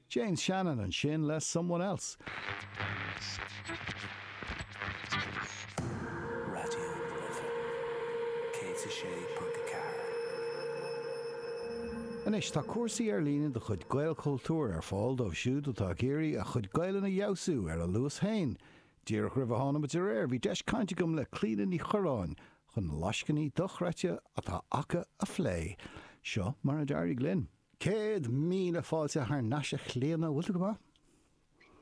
Jane Shannon ansin le Someone Else. Anois tá cúrsaí ar líne de chuid Gaelchultúr ar fáil dóibh siúd atá ag iarraidh a gcuid Gaelainne a fheabhsú ar a luas féin. Díreach roimh a thánamar ar aer bhí deis cainte agam le Clíona Ní Chuireáin, chun na lascainí dochreidte atá acu a phlé. Seo mar a d'éirigh linn. Céad míle fáilte thar n-ais a Chlíona, bhfuil tú go maith?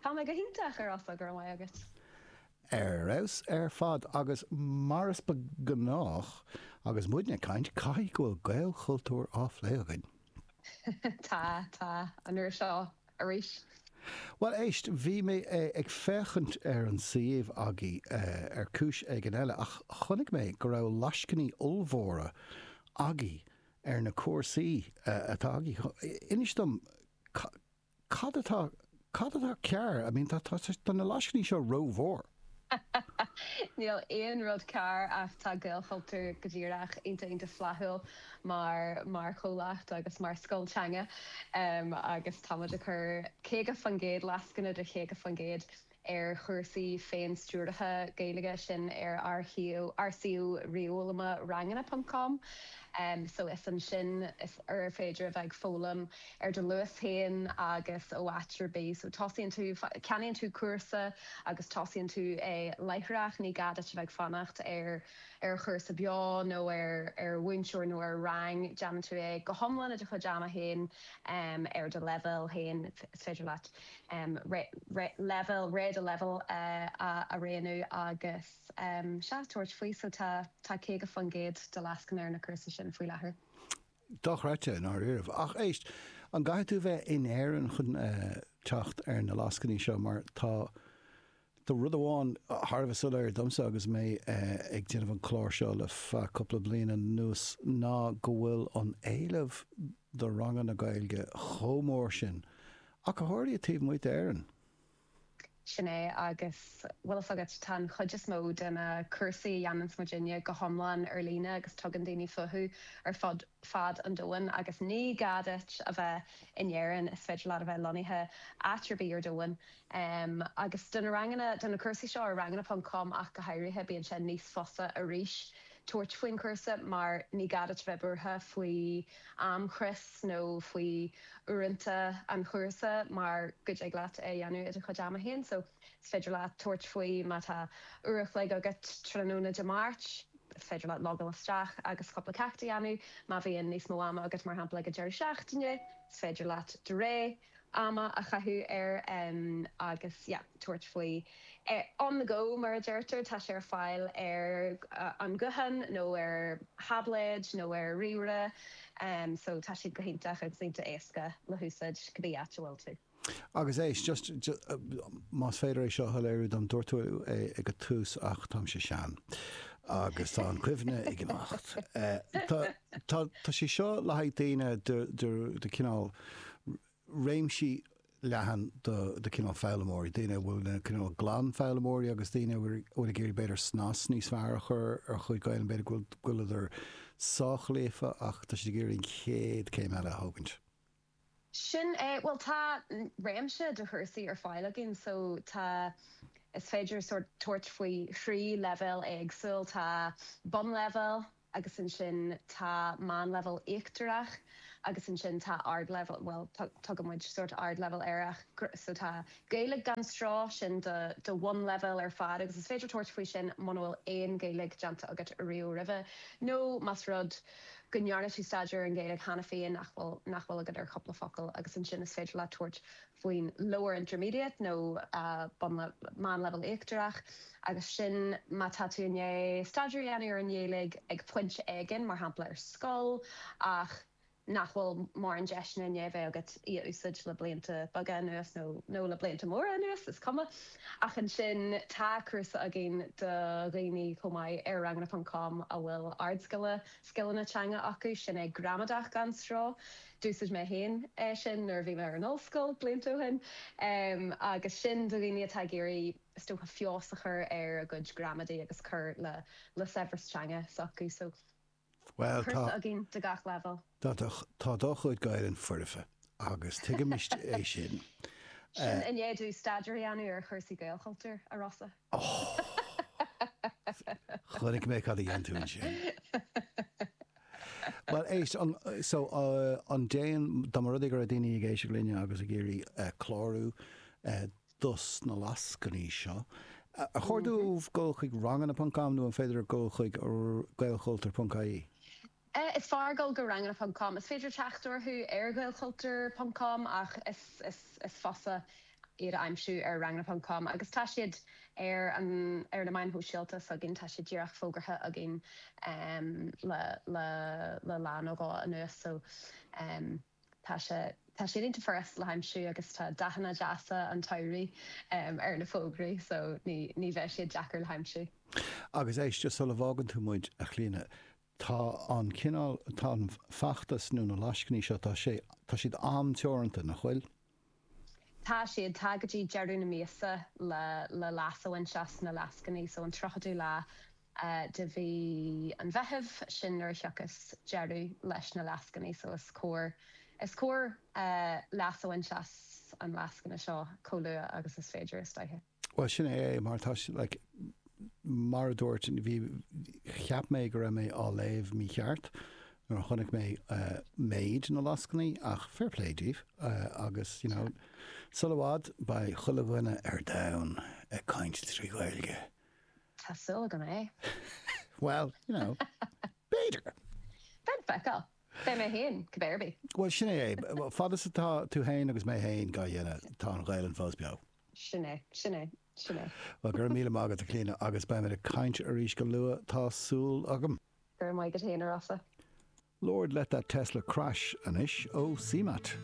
Tá mé go hiontach, ar fheabhas, go raibh maith agat. Ar feabhas ar fad agus mar is gnách agus muid ag caint, caithfidh go bhfuil Gaelchultúr á phlé againn. Tá, tá, an uair seo. arís. Bhuel, éist, bhí mé ag féachaint ar an suíomh agaibh ar chúis éigin eile ach chonaic mé go raibh lascainí ollmhóra agaibh ar na cúrsaí atá agaibh. Inis dom, cad atá, cad atá cearr, I mean, tá na lascainí seo rómhór. Níl aon rud cearr ach tá Gaelchultúr go díreach iontach, iontach flaithiúil mar, mar chomhlacht agus mar scoil teanga agus tá muid ag cur 50%, lascaine de 50% ar chúrsaí féin-stiúraithe Gaeilge, sin ar ár shuíomh, ár suíomh ríomhfhoghlama ranganna ponc com so is ansin is féidir a bheith ag foghlaim. ar do luas féin agus ó áit ar bith. So tosaíonn tú, ceannaíonn tú cúrsa agus tosaíonn tú é láithreach, ní gá duit a bheith ag fanacht ar ar chúrsa beo nó ar ar mhúinteoir nó ar rang, déanann tú é go hiomlán i do chuid ama féin, ar do leibhéal féin, is féidir leat leibhéal, ré do leibhéal a rianú agus sea, tabhairt faoi. So tá tá 50% de lascaine ar na cúrsaí sin faoi láthair. Dochreidte, i ndáiríribh. Ach éist, an gcaithfidh tú bheith in Éirinn chun teacht ar na lascainí seo? Mar tá rud amháin thar a bheith soiléir domsa agus mé ag déanamh an clár seo le feadh cúpla bliain anuas ná go bhfuil an t-éileamh do ranganna Gaeilge chomh mór sin, ach go háirithe taobh amuigh d'Éirinn. Sin é, agus bhfuil fhios agat, tá an chuid is mó de na cúrsaí a dhéananns muidinne go hiomlán ar líne agus tugann daoine fúthu ar fud fad an domhain agus ní gá duit a bheith in Éirinn, is féidir leat a bheith lonnaithe áit ar bith ar domhan. Agus do na ranganna, do na cúrsaí seo ar ranganna ponc com ach go háirithe, bíonn sé níos fusa arís. tabhairt faoin chúrsa mar ní gá duit bheith buartha faoi amchrios nó faoi uaireanta an chúrsa mar go dtig leat é a dhéanamh i do chuid ama féin so is féidir leat tabhairt faoi má tá uair a chloig agat tráthnóna Dé Máirt, is féidir leat logáil isteach agus cúpla ceacht a dhéanamh, má bhíonn níos mó ama agat mar shampla ag an deireadh seachtaine is féidir leat dhá uair. ama a chaitheamh air agus yeah tabhairt faoi eh on the go mar a deirtear, tá sé ar fáil ar an ghuthán nó ar tháibléid nó ar ríomhaire em so tá siad go hiontach agus iontach éasca le húsáid cibé áit a bhfuil tú. Agus éist, just más féidir é seo a shoiléiriú dom, dúirt tú é ag an tús ach táimse sean agus tá an chuimhne ag imeacht. Eh tá, Tá sé seo le haghaidh daoine de chineál, réimsí leathan de chineál foghlaimeoirí, daoine a bhfuil na cineál glan foghlaimeoirí agus daoine a bhfuil ag iarraidh b'fhéidir snas níos fearr a chur ar a gcuid Gaelainne, b'fhéidir go bhfuileadar sách líofa ach tá siad ag iarraidh an chéad céim eile a thógaint. Sin é, bhuel tá réimse de chúrsaí ar fáil againn so tá, is féidir sórt tabhairt faoi thrí leibhéal éagsúil, tá bunleibhéal agus ansin tá meánleibhéal íochtarach agus ansin tá ardleibhéal, bhuel tugann muid sórt ardleibhéal air ach so tá Gaeilge gan Stró, sin don bhunleibhéal ar fad agus is féidir tabhairt faoi sin muna bhfuil aon Ghaeilge déanta agat ariamh roimhe nó más rud go ndearna tú staidéar ar an Ghaeilge cheana féin ach nach bhfuil agat ach cúpla focal agus ansin is féidir leat tabhairt faoin Lower Intermediate nó Meánleibhéal Íochtarach agus sin má tá tú i ndiaidh staidéar a dhéanamh ar an nGaeilge ag pointe éigin, mar shampla ar scoil, ach nach bhfuil mórán deiseanna i ndiaidh a bheith agat í a úsáid le blianta beaga anuas nó le blianta móra anuas, is cuma. Ach ansin tá cúrsa againn do dhaoine chomh maith ar ranganna.com a bhfuil ardscil scileanna teanga acu, sin é Gramadach gan Stró! D'úsaid mé féin é sin nuair a bhí mé ar an ollscoil blianta ó shin agus sin do dhaoine atá ag iarraidh is dócha feabhas a chur ar a gcuid gramadaí agus cur le saibhreas teanga s'acusan. Bhuel, tá. Cúrsa againn de gach leibhéal. Tá do, tá do chuid Gaelainn foirfe agus tuigimis é sin. Sin i ndiaidh staidéar a dhéanamh ar chúrsaí Gaelchultúr, a Rossa. Ohh! Chonaic mé cad a dhein tú ansin. Bhuel, éist, an, so, an, déan, dá mba rud é go raibh daoine ag éisteacht linne agus ag iarraidh clárú, dos na lascainí seo. Ar chóir dóibh dul chuig ranganna.com nó an féidir dul chuig gaelchultur.ie? Is fearr dul go ranganna.com. Is féidir teacht orthu ar ghaelchultur.com ach is fusa iad a aimsiú ar ranganna.com agus tá siad ar na meáin shóisialta s'againn, tá siad díreach fógartha againn le lá nó dhó anuas. Tá sé tá siad iontach furasta le haimsiú agus tá dathanna deasa an tsamhraidh ar na fógraí so ní ní bheidh siad deacair le haimsiú. Agus éist, sula bhfágann tú muid, a Chlíodhna, tá an cineál, tá an feachtas nó na lascainí seo, tá sé, tá siad am-teoranta, nach bhfuil? Tá siad, tá go dtí deireadh na míosa le, le leas a bhaint as na lascainí. So an tríochadú lá de mhí an Mheithimh, sin nuair a thiocfas deireadh leis na lascainí. So is cóir, is cóir leas a bhaint as an lascaine seo chomh luath agus is féidir is dóiche. Bhuel sin é é mar tá sé like mar a dúirt bhí cheap mé go raibh mé á léamh mícheart nuair a chonaic mé méid na lascainí ach fair play daoibh agus you know sul i bhfad beidh chuile dhuine ar domhan ag caint trí Ghaeilge. Tá súil agam é. Bhuel you know b'fhéidir. Beidh le feiceáil. Beidh mé féin, cibé ar bith. Bhuel, sin é é. Fad is atá tú féin agus mé féin dhá dhéanamh, tá an Ghaelainn fós beo. Sin é. Sin é. Sin é. Bhuel, go raibh míle maith agat, a Chlíodhna, agus beimid ag caint arís go luath, tá súil agam. Go raibh maith agat féin, a Rossa. Lord, let that Tesla crash anois ó CMAT.